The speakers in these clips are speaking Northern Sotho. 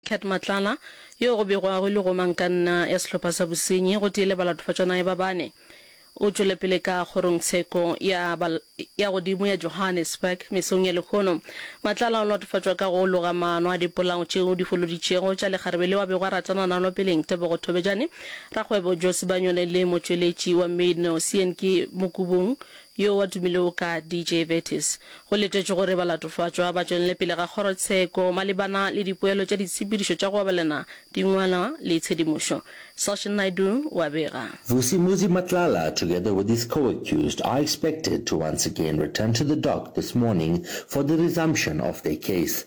Cat Matlala, yo go bego a hwile go mankanna ya sehlopha sa bosenyi gotee le balatofadjanaye ba bane, o tšwelepele ka kgorongtsheko ya ya godimo ya Johannesburg mesong ya lehono. Matlala o latofatšwa ka go loga maano a dipolao tšeo di foloditšego tša lekgarebe leo a bego a ratana nalo peleng, Tebogo Thobejane, rakgwebo Joe Sibanyone le motšweletši wa Maidno, Seanki Mokubung, Yo wa tumile o ka DJ Vertis. Go letetšwe gore balatofatšwa ba tšwelele pele ga kgorotsheko malebana le dipoelo tša ditshepedišo tša go abelana dingwalwa le tshedimošo. Sachin Naidu o a bega. Vusi Muzi Matlala together with his co-accused are expected to once again return to the dock this morning for the resumption of their case.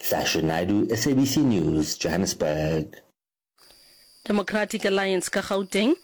Hlashi Naidoo, SABC News, Johannesburg. Democratic Alliance ka Gauteng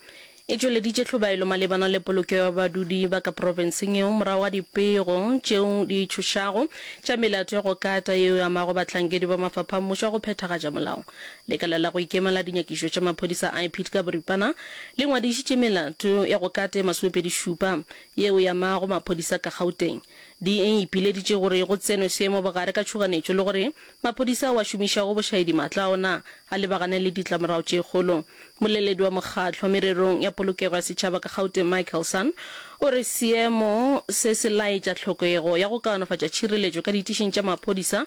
e tšweleditše hlobaelo malebana le polokeo ya badudi ba ka profenseng yeo morago ga dipego tšeo di tšhošago tša melato ya go kata yeo e amago bahlankedi ba mafapha a mmušo a go phethagatša molao. Lekala la go ikema la dinyakišo tša maphodisa IPID ka boripana le ngwadišitše melato ya go kata e masomepedi šupa yeo e amago maphodisa ka Gauteng. di e ipileditše gore go tsenwe seemo bogare ka tšhoganetšo le gore maphodisa ao a šomišago bošaedimaatla a ona a lebagane le ditlamorago tše kgolo. Moleledi wa mokgatlo mererong ya polokego ya setšhaba ka Gauteng Michael Sun o re seemo se se laetša tlhokego ya go kaonafatša tšhireletšo ka ditišeng tša maphodisa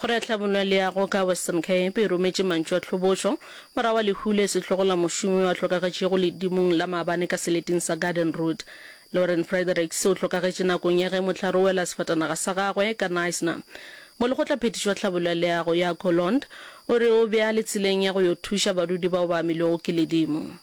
Go re hlabollo le ya go ka Western Cape e rometše mantšu a tlhobotšo morago ga lehu le sehlogo la mošomi yo a hlokagetšego ledimong la maabane ka seleting sa Garden Route. Lauren Fredericks o hlokagetše nakong ya ge mohlare o wela sefatanaga sa gagwe ka Knysna. Molekgotlaphethiši wa tlhabollo ya leago Jaco Lond o re o bea le tseleng ya go yo thuša badudi bao ba amilwego ke ledimo.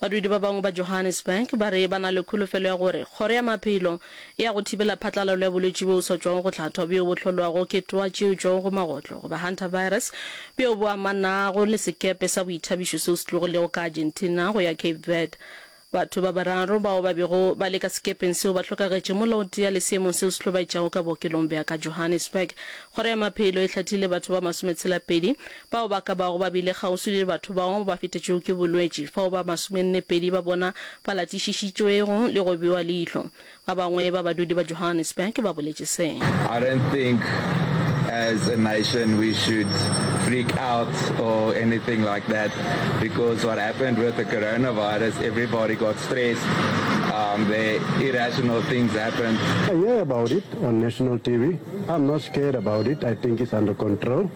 Badudi ba bangwe ba Johannesburg ba re ba na le kholofelo ya gore Kgoro ya Maphelo e ya go thibela phatlalalo ya bolwetši bjo sa tšwago go hlathwa bjo bo hlolwago ke twa tše tšwago go magotlo goba hantavirus bjo bo amanago le sekepe sa boithabišo seo se tlogilego ka Argentina go ya Cape Verde. Batho ba bararo bao ba bego ba le ka sekepeng seo ba hlokagetše molaothea le seemong seo se hlobaetšago ka bookelong bja ka Johannesburg. Kgoro ya Maphelo e hlathile batho ba masometshela-pedi Bao ba ka bago ba bile kgauswi le batho bao ba fetetšwego ke bolwetši, fao ba masomennepedi ba bona ba latišišitšwego le go bewa leihlo, ba bangwe ba badudi ba Johannesburg ba boletše se. I don't think as a nation we should freak out or anything like that because what happened with the coronavirus everybody got stressed um the irrational things happened. I hear about it on national TV, I'm not scared about it, I think it's under control.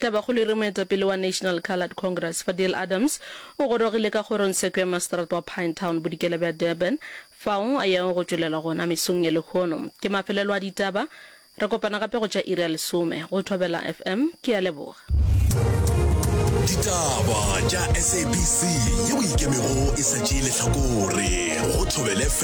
Tabakgolo e re moetapele wa National Coloured Congress, Fadil Adams, o gorogile ka kgorongsheko ya maseterata wa Pinetown bodikela bja Durban, fao a yago go tšwelela gona mesong ye lehono. Ke mafelelo a ditaba. Re kopana gape go tša iri ya lesome go Thobela FM. Ke a leboga. Ditaba tša SABC ye o ikemego e sa tšee lehlakore go Thobela FM.